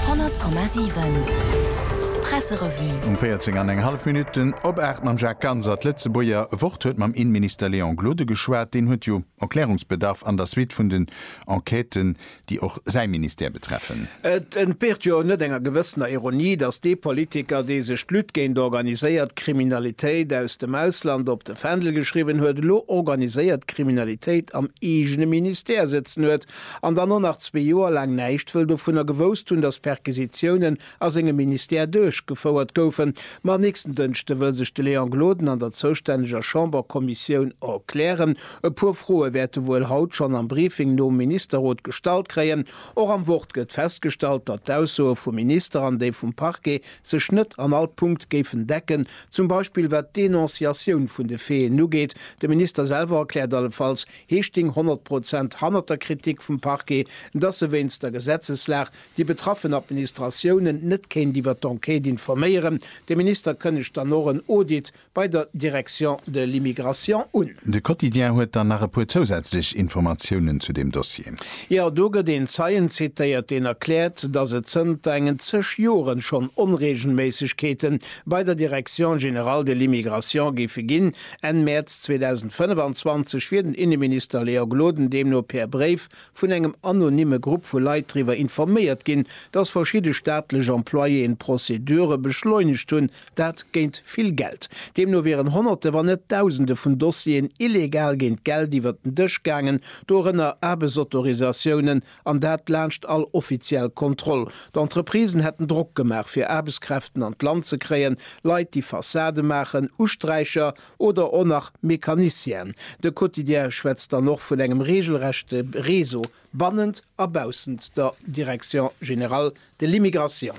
100,7 Presserevue. Um 14 an eng hallef Minutten op 8 mam Jacques Ganser. D'Lëtzebuerger Wort huet mam Innenminister Léon Gloden geschwat. Deen huet jo Erklärungsbedarf an der Suite vun den Enquêten, déi och säi Ministère betreffen. Et entbeert jo net enger gewëssener Ironie, datt dee Politiker, dee sech d'Lutte géint organiséiert Kriminalitéit aus dem Ausland op de Fändel geschriwwen huet, elo organiséiert Kriminalitéit am eegene Ministère sëtzen huet, an dann och nach zwee Joer laang näischt wëll dovunner gewousst hunn, datt Perquisitiounen a sengem Ministère duerchgefouert goufen. Ma nächsten Dënschde wëll sech de Léon Gloden an der zoustänneger Chamberkommissioun erklären. E puer Froe wäerte wuel haut schonn am Briefing nom Ministerrot gestallt kréien. Och am Wort gëtt festgestallt, datt d'Aussoe vum Minister an déi vum Parquet sech net an all Punkt géifen decken, zum Beispill wat d'Denonciatioun vun de Faiten ugeet. De Minister selwer erkläert allefalls, Hie sting honnert Prozent hannert der Kritik vum Parquet, dass e wéinst der Gesetzeslag déi betraffen Administratiounen net kéint iwwer d'Enquête informéieren. De Minister kënnegt dann och en Audit bei der Direction de l'immigration un. De Quotidien huet dann nach e puer zousätzlech Informatiounen zu deem Dossier. Jo, do gëtt een Zeien zitéiert, deen erkläert, dass et zënter engen zeg Joren schonn Onreegelméissegkeete bei der Direction générale de l'immigration géife ginn, Enn Mäerz 2025 wier den Inneminister Léa Gloden deemno per Bréif vun engem anonymme Grupp vu Leit driwwer informéiert ginn, datt verschidde staatlech Employéen Prozedure beschleunegt hunn, dat géint vill Geld. Deemno wieren Honnerte, wann net Dausende vun Dossieren illegal géint Geld iwwert den Dësch gaangen, dorënner Aarbechtsautorisatiounen An dat laanscht all offiziell Kontroll. D'Entreprisen hätten Drock gemaach, fir Aarbechtskräften an d'Land ze kréien, Leit, déi Fassade maachen, Usträicher oder och nach Mécanicienen. De Quotidien schwätzt dann och vun engem regelrechte Réseau bannent a baussent der Direction générale de l'immigration.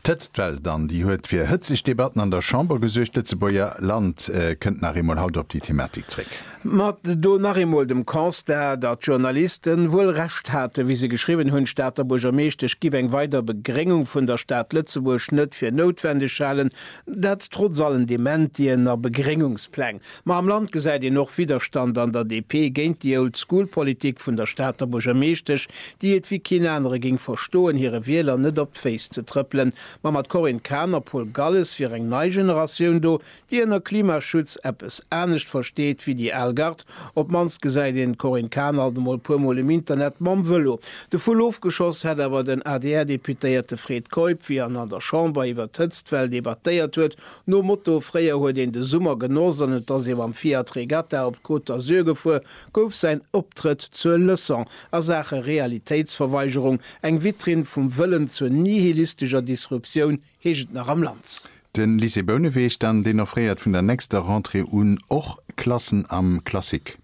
D'Hëtzt wellt an, déi huet fir hëtzeg Debatten an der Chamber gesuergt. D'Lëtzebuerger Land kënnt nach eemol haut op déi Thematik zréck. Mä do nach eemol dem Constat, datt d'Journalisten wuel Recht haten, wéi se geschriwwen hunn, d'Stater Buergermeeschtesch giff eng weider Begréngung vun der Stad Lëtzebuerg net fir noutwendeg halen, dat trotz allen Dementien a Begréngungspläng. Ma am Land gesäit een och Widderstand an der DP géint déi Old School Politik vun der Stater Buergermeeschtesch, déi et wéi keen anere géing verstoen, hire Wieler net op d'Féiss ze trëppelen. Ma mat Corinne Cahen a Paul Galles wier eng nei Generatioun do, déi ënner Klimaschutz eppes anescht versteet wéi déi al Gard. Op d'mannst gesäit een d'Corinne Cahen alt emol puer Mol um Internet mam Vëlo. De Vull ofgeschoss hätt awer den ADR-Deputéierte Fred Keup, wéi en an der Chamber iwwer d'Hëtztwell debattéiert huet, Nom Motto, Fréier huet een de Summer genoss an et ass ee mam Fiat Regatta op d'Côte d'Azur gefuer, gouf säin Optrëtt zur Leçon a Saache Realitéitsverweigerung, eng Vitrinn vum Wëllen zur nihilistescher Disruptioun, heescht et nach am Lanz. De Lycée Bouneweg dann, deen offréiert vun der nächster Rentrée un och Klassen am Classique.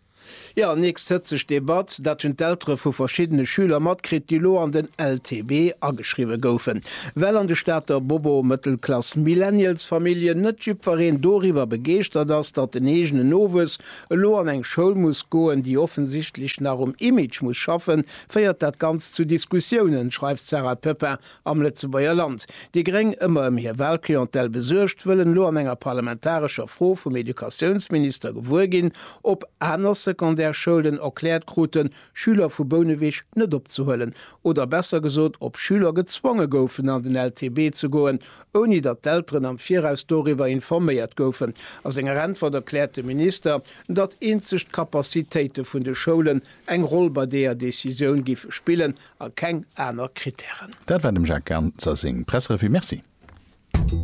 Jo, nächst hëtzeg Debatt, dat hunn d'Eltere vu verschiddene Schüler matkritt, déi elo an den LTB ageschriwwe goufen, well an de Stater Bobo Mëttelklass Millennials Familljen net jiddwereen doriwwer begeeschtert ass, datt den eegenen Nowuess elo an eng Schoul muss goen, déi offensichtlech nach um Image muss schaffen, féiert dat Ganzt zu Diskussiounen, schreift d'Sarah Pepin Am Lëtzebuerger Land. Déi Gréng, ëmmer ëm hir Wahlclientèle besuergt, wëllen elo an enger parlamentarescher Fro vum Educatiounsminister gewuer ginn, ob aner Secondaire-Schoulen erkläert kruten, Schüler vu Bouneweg net opzehuelen. Oder besser gesot, ob Schüler gezwonge goufen, an den LTB ze goen, ouni datt d'Elteren am Viraus doriwwer informéiert goufen. A senger Äntwert erkläert de Minister, datt eenzeg d'Capacitéite vun de Schoulen eng Roll bei deeër Decisioun géife spillen, A keng aner Kritären. Dat war dem Jacques Ganser seng Presserevue. Merci.